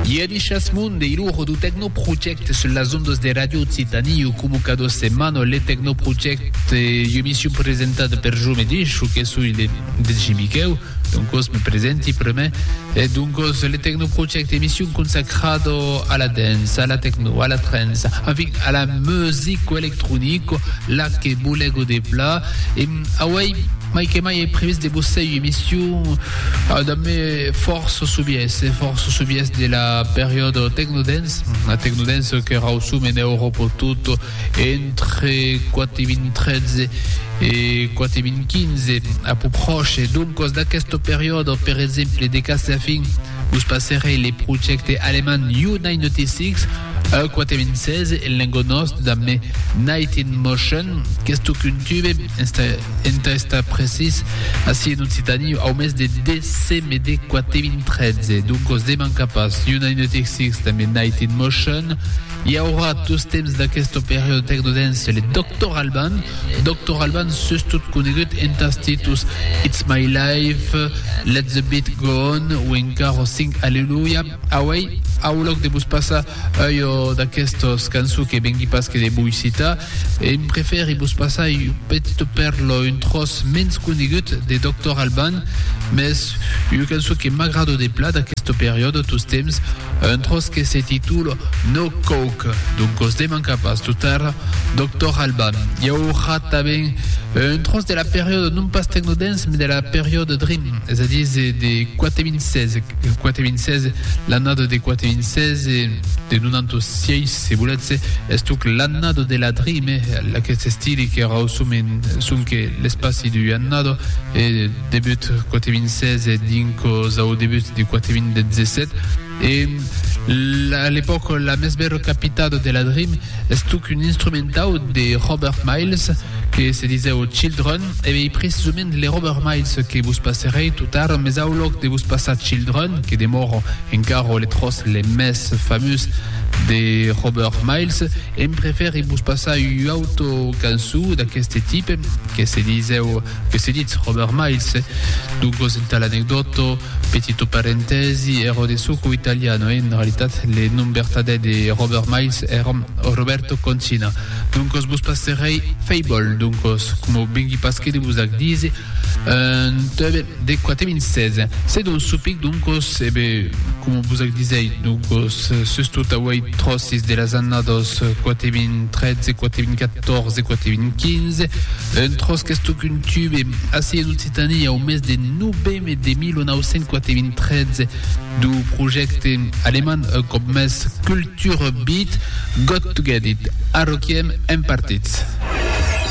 Ieri chasmon de iluro du Tecnoproject sul las ondas de Radio Occitanie o comu cada setmana le Tecnoproject emission presentada per jo mateix o que soi le DJ Miqueu donc os me presenti preme e donc os le Tecnoproject emission consacrada a la dance, a la techno, a la trance, enfin a la musique électronique la que bolego de pla e Auèi mai que mai è previst de vos sèir emission damb me fòrça sovièrs e fòrça sovièrs de la periòda Tecnodance, la Tecnodance que rausum en Euròpa tot entre 4.013 e 4.015 a pus pròche. Doncas d'aquesta periòda, per exemple, de cas a fin, Vos passerè le projècte alemand U-96, U-96 en lengo nòst damb me Night in Motion, qu'es tocun tube, entà estar precís, ací en Occitània, au mes de decemede 4.013. Doncos deman capas U-96 damb me Night in Motion. I aurà dos temps d'aquesta periòda tecnodance, le Doctor Alban, Doctor Alban sustot conegut entàs títtols It's My Life, Let the Beat Go On o encara Sing Alleluia. Auei aulòc de vos passar ua d'aquestas cançons que vengui pas que de voi citar, em prefèri vos passar un petit pèrla, un tròç mens conegut de Doctor Alban, mès ua cançon que m'agrada de plat d'aquesta periòda, tostemps, Un tròç que se titula No Coke, doncos demanca pas totar Doctor Alban. I aurà tanben un tròç de la periòda non pas tecno-dance mas de la periòda dream, es a dire de 4.016, 4.016, l'annada de 4.016, de 96 se volètz, estoc l'annada de la dream, eh, aquest estili que rauçum en sonque l'espaci d'ua annada, e, Debut quate min sese dincos au debut de quate min detzesset e a l'epòc la mès bèra capitada de la Dream estuc un instrumentau de Robert Miles que se disèu Children e ei precisament le Robert Miles que vos passerèi tot ara mes au lòc de vos passar Children que demòra encara le tròç le mès famós de Robert Miles em prefèri vos passar ua auta cançó d'aqueste tipe que se disèu Que se ditz Robert Miles? Doncos entà l'anecdòto, petito parentèsi, èro de suco italiano e en realitat le nom bertadèr de Robert Miles èra Roberto Concina. Doncos vos passerèi Fable, doncos, coma vengui pas que de vos ac díser, un tube de quate vinces. Se dons supic, doncos, e be, coma vos ac disèi, doncos, sus tot auei tròssis de las annadas quate vint trètze, quate vint catòrze, quate vint quinze, Un tròç qu'es tòc un tube, ací en Occitània, au mes de noveme de 1993, dau projècte alemand un còp mès Kulturbeat, Got to Get It, Arroquiem en partits.